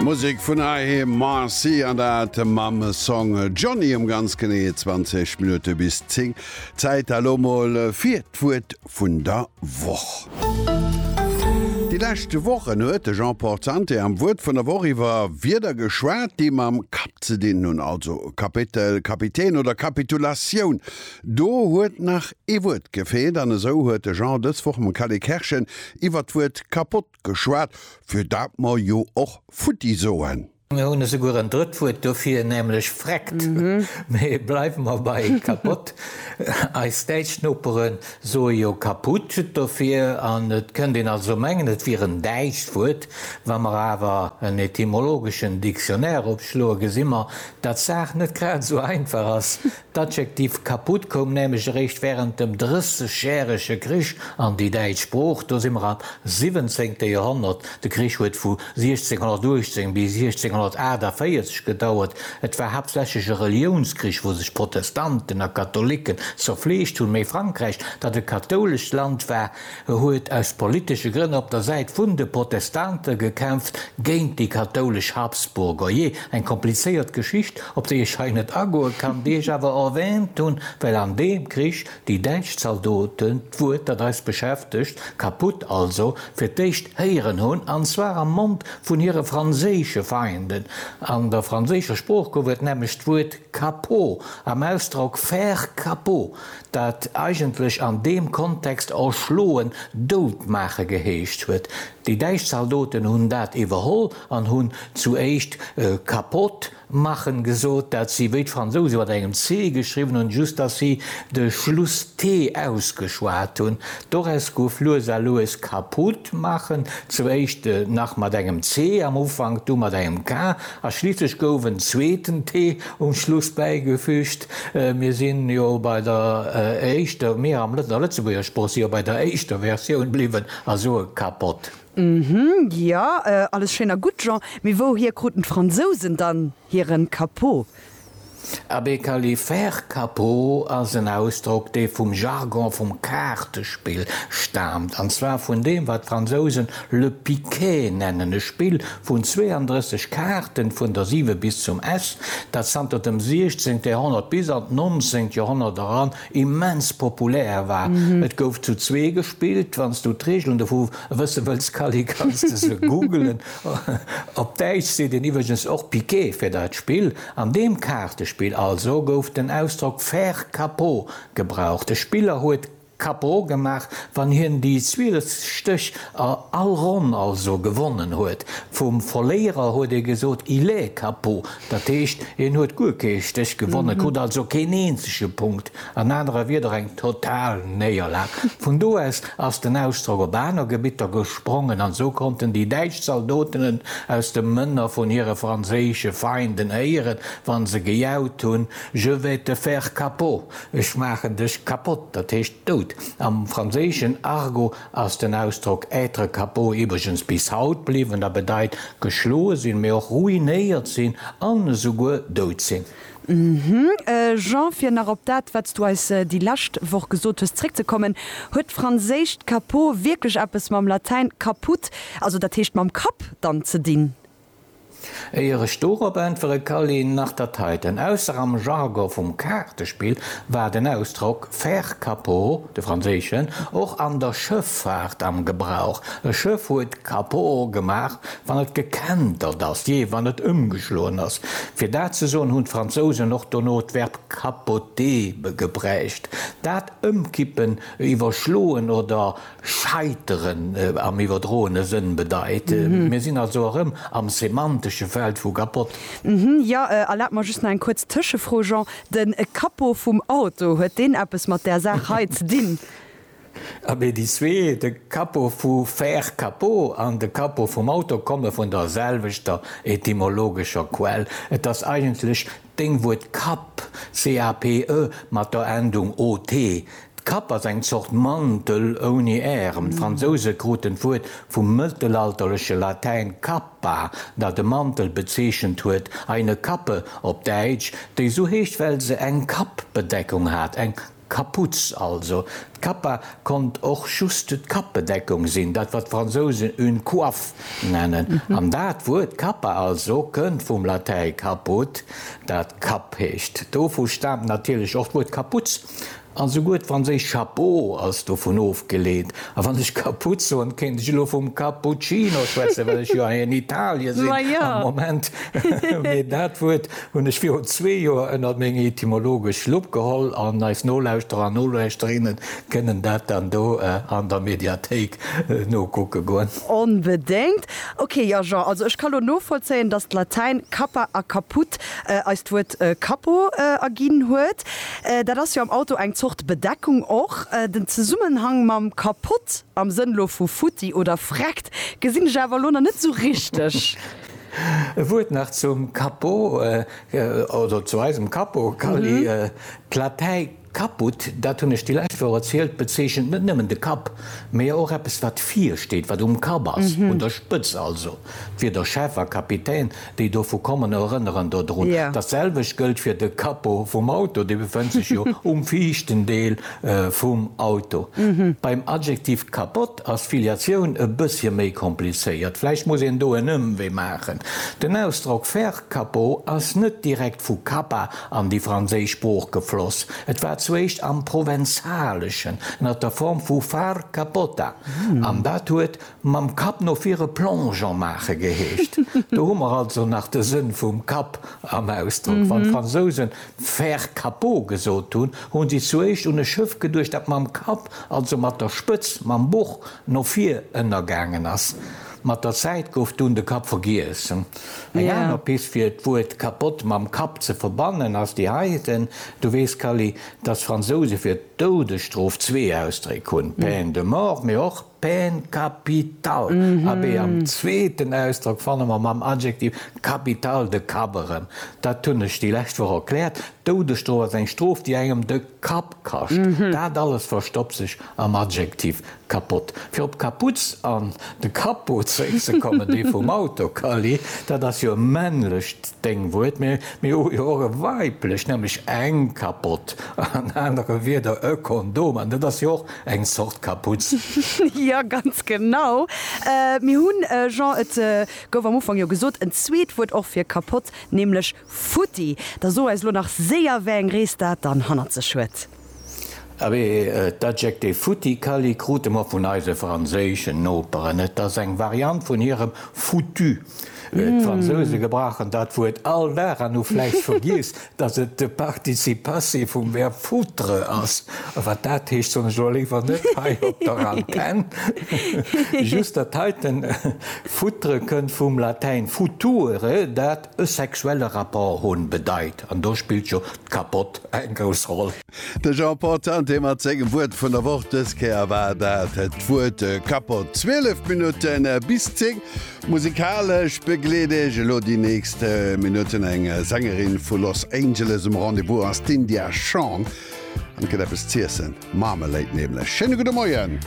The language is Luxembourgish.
Musek vun heiheem, Marcy, an dat mam Song Johnny um ganz genee 20 Minutte bis 10. Zäit elo mol fir d'Wuert vun der Woch. Déi lescht Wochen huet de Jean Porzanté am Wuert vun der Woch iwwer Wierder geschwat, déi mam Kapp ze dinn hunn, also Kapitel, Kapitän oder Kapitulatioun. Do huet nach ee Wuert gefeelt an esou huet de Jean dës Woch mam Calé Kerschen iwwer d'Wuert kapott geschwat, fir dat mer jo och futti soen. Mir hunn esouguer en drëtt Wuert dofir, nämlech vreckt. Mee bleiwe mer bei kapott. Eis däitsch Nopere soe jo kaput dofir an et kënnt een also mengen, et wier en däitscht Wuert. Wa mer awer en etymologeschen Dictionnaire opschloe gesi mer, dat d'Saach net grad esou einfach ass, D'Adjektiv kaputt koum nämlech eréischt wärend dem Drëssegjärege Krich an déi däitsch Sprooch, do si mer am siwwenzéngte Joerhonnert, de Krich huet vu 1618 bis 1648 gedauert, et war haaptsächlech e Reliounskrich, wou sech Protestanten a Katholicken zerfleegt hunn, mä Frankräich, dat e kathoulescht Land war, E huet aus politesche Grënn op der Säit vun de Protestante gekämpft, géint déi kathoulesch Habsburger. Jee, eng komplizéiert Geschicht, op déi ech hei net agoe kann, déi ech awer erwäänt hunn, well an deem Krich déi däitsch Zaldoten, d'Wuert, dat eis beschäftegt, kaputt also, fir d'éischt héieren hunn, an zwar am Mond vun hire franséische Feinden. An der franséischer Sprooch gouf et nämlech d'Wuert Capot am Ausdrock faire capot. dat eigentlech an deem Kontext erschloen, dout maache geheescht huet. Déi däitsch Zaldoten hunn dat iwwerholl an hunn zu éischt kapott machen gesot, dat si wéi d'Fransousen mat engem C geschriwwen hunn, just datt si de Schluss T ausgeschwat hunn. Doraus gouf lues a lues kaputt machen, zu éischt nach mat engem C am Ufank, du mat engem K a schliisslech gouf en zweeten T um Schluss bäigefüügt. Mir si jo bei der éischter, mir am Lëtz, a Lëtzebuerger Sprooch, si jo bei der éischter Versioun bliwwen a soe Capote. Ëhm, jo, alles schéin a gutt, Jean, mee wouhier kruten d'Fransousen dann hiren Capot? Abee, Kally, faire capot ass en Ausdrock, dee vum Jargon vum Kaartespill staamt, an zwar vun deem, wat d'Fransousen le piquet nennen, e Spill, Vun 32 Kaarten vun der 7 bis zum S, dat zanter dem 16. Joerhonnert bis an d'nonzéngt Joerhonnert eran immens populär war. Et gouf zu zwee gespillt. Wann s du d'Reegelen dovu wësse wëlls, Kally, kanns de se googelen. Op Däitsch seet een iwwregens och Piqué fir dat Spill. An deem Kaartespill also gouf den Ausdrock faire capot gebraucht. De Spiller huet. Capo gemaach, wann hien déi 12 Stéch a all Ronn also gewonnen huet. Vum Verléierer huet ee gesot, il est capo, dat heescht, hien huet guer kee Stéch gewonnen, krut also keen eenzege Punkt, an anere Wieder eng total Néierlag. Vun do aus ass den Ausdrock op aner Gebitter gesprongen, an esou konnten déi däitsch Zaldotenen aus de Mënner vun hire franséische Feinden héieren, wa se gejaut hunn, Je vais te faire capo! Ech maachen dech kapott, dat heescht dout. Am franséischen Argot ass den Ausdrock être capot iwwregens bis haut bliwwen a bedeit geschloe sinn, mee och ruinéiert sinn an esouguer dout sinn. Jean, fir nach op dat, wat s du eis déi lescht Woch gesot hues, zréckzekommen, Huet d'franséischt capot wierklech eppes mam Latäin caput, also dat heescht mam Kapp, dann ze dinn? Éier ech dorop äntwere Kally, nach dat heiten, ausser am Jargon vum Kaartespill war den Ausdrock faire capot, de franséischen, och an der Schëffaart am Gebrauch, e Schëff huet capot gemaach, wann et gekentert ass, jee, wann et ëmgeschloen ass. Fir dat ze soen, hunn d'Fransousen och dono d'Verb capoter gebräucht, dat ëmkippen, iwwerschloen oder Scheiteren am iwwerdroene Sënn bedeit. Mir sinn also erëm am semantesche Feld vu kapott. Jo, erlaabt mer just nach eng kuerz Tëschefro, Jean. De Capot vum Auto, huet deen eppes mat där Saach hei ze dinn? Abee, déi zwee, de Capot vu faire capot an de Capot vum Auto, komme vun der selwechter etymologescher Quell. Et ass eigentlech Deng Wuert Kapp, C-A-P-E, mat der Endung O-T, d'Kapp ass eng Zort Mantel ouni Ärem. D'Fransouse kruten d'Wuert vum mëttelalterleche Latäin cappa, dat e Mantel bezeechent huet, eine Kappe op Däitsch, déi sou heescht, well se eng Kappbedeckung hat, eng. Kaputz also. D'Kappa konnt och just d'Kappbedeckung sinn, dat wat d'Fransousen une coiffe nennen. An dat Wuert Kappa also kënnt vum Latäi caput, dat Kapp heescht. Dovu staamt natierlech och d'Wuert Kaputz, a souguer d'franséischt chapeau ass dovun ofgeleet. A wann ech Kaputz soen, kéint ech elo vum Cappuccino schwätzen, well ech jo hei an Italie sinn am Moment, mee dat Wuert Hunn ech virun zwee Joer ënnert meng etymologesch Lupp geholl an eis Nolauschterer an Nolauschterinnen kënnen dat dann do an der Mediathéik nokucke goen. Onbedéngt. Ok, jo Jean, also ech ka lo novollzéien, dass d'Latäin cappa a caput eis d'Wuert Cappo erginn huet. Dat ass jo am Auto eng Zort Bedeckung och. Den Zesummenhang mam kapott, am Sënn lo vu futti oder vreckt, gesinn ech awer lo nach net sou richteg. E Wuert nach zum Capo oder zu eisem Capo, Kally. D'Latei caput, dat hunn ech déi lescht Woch erzielt, bezeechent net nëmmen de Kapp, mä jo och eppes, wat vir steet, wat um Kapp ass, un der Spëtz also. D'Wierder Chef a Kapitän, déi dovu kommen, erënneren dodrun. Dat selwecht gëllt fir de Capo vum Auto, dee befënnt sech jo um viischten Deel vum Auto. Beim Adjektiv capot Ass d'Filiatioun e bëssche méi komplizéiert? Vläicht muss een do en Ëmwee maachen. Den Ausdrock faire capot ass net direkt vu Kappa an déi franséisch Sprooch gefloss. Et war zuéischt am Provenzaleschen ënner der Form vu far capota an dat huet mam Kapp no vir e Plongeon maache geheescht. Do hu mer also nach de Sënn vum Kapp am Ausdrock. Wann d'Fransousen Faire Capot gesot hunn, hu si zuéischt un e Schëff geduecht, dat mam Kapp, also mat der Spëtz, mam Buch no vir ënnergaangen ass. Mat der Zäit gouf dunn de Kapp vergiess. Eng aner Pist fir d'Wuert Capote mam Kapp ze verbannen ass déi heiten, Du weess, Kally, datt d'Fransouse fir d'Doudesstrof zwee Ausdréck hunn, peine de mort, mee och. Peine capitale, abee am zweeten Ausdrock fanne mer mam Adjektiv capitale de Kapp erëm. Dat hunn ech déi lescht Woch erkläert, d'Doudesstrof ass eng Strof, déi engem de Kapp kascht. Dat alles verstoppt sech am Adjektiv kapott. Fir op d'Kaputz an de Capot zeréckzekommen, dee vum Auto, Kally, dat ass jo e männlecht Déngwuert, mä mir hu jo och e weiblecht, nämlech eng Kapott, an anere Wierder e Kondom, an dat ass jo och Eng Zort Kaputz. Jo, ganz genau. Mir hunn, Jean, et gouf am Ufank jo gesot, en zweet Wuert och fir kapott, nämlech futti. Da so eis elo nach séier, wéi eng Rees dat dann hannert sech huet. Abee, d'Adjektiv futti, Kally, krute mer vun eise franséischen Noperen. Et ass eng Variant vun hirem foutu. D'Fransouse gebrauchen dat Wuert all Dag an hu vläicht vergiess, datt et de Participe passé vum Verb foutre ass. A wat dat heescht, soen ech elo léiwer net hei op der Antenn. Just dat heite foutre kënnt vum Latäin future, dat e sexuelle Rapport hunn bedeit. An do spillt jo d'Kappott eng grouss Roll. De Jean Paul Tante mat sengem Wuert vun der Woch. Dës Kéier war dat d'Wuert Kappott. 12 Minutte bis 10, musikalesch begleet Iech elo déi nächst Minutten eng Sängerin vu Los Angeles. Um Rendez-vous ass d'India Shawn an et gëtt eppes z'iessen, Marmalade nämlech. Schéine gudde Moien!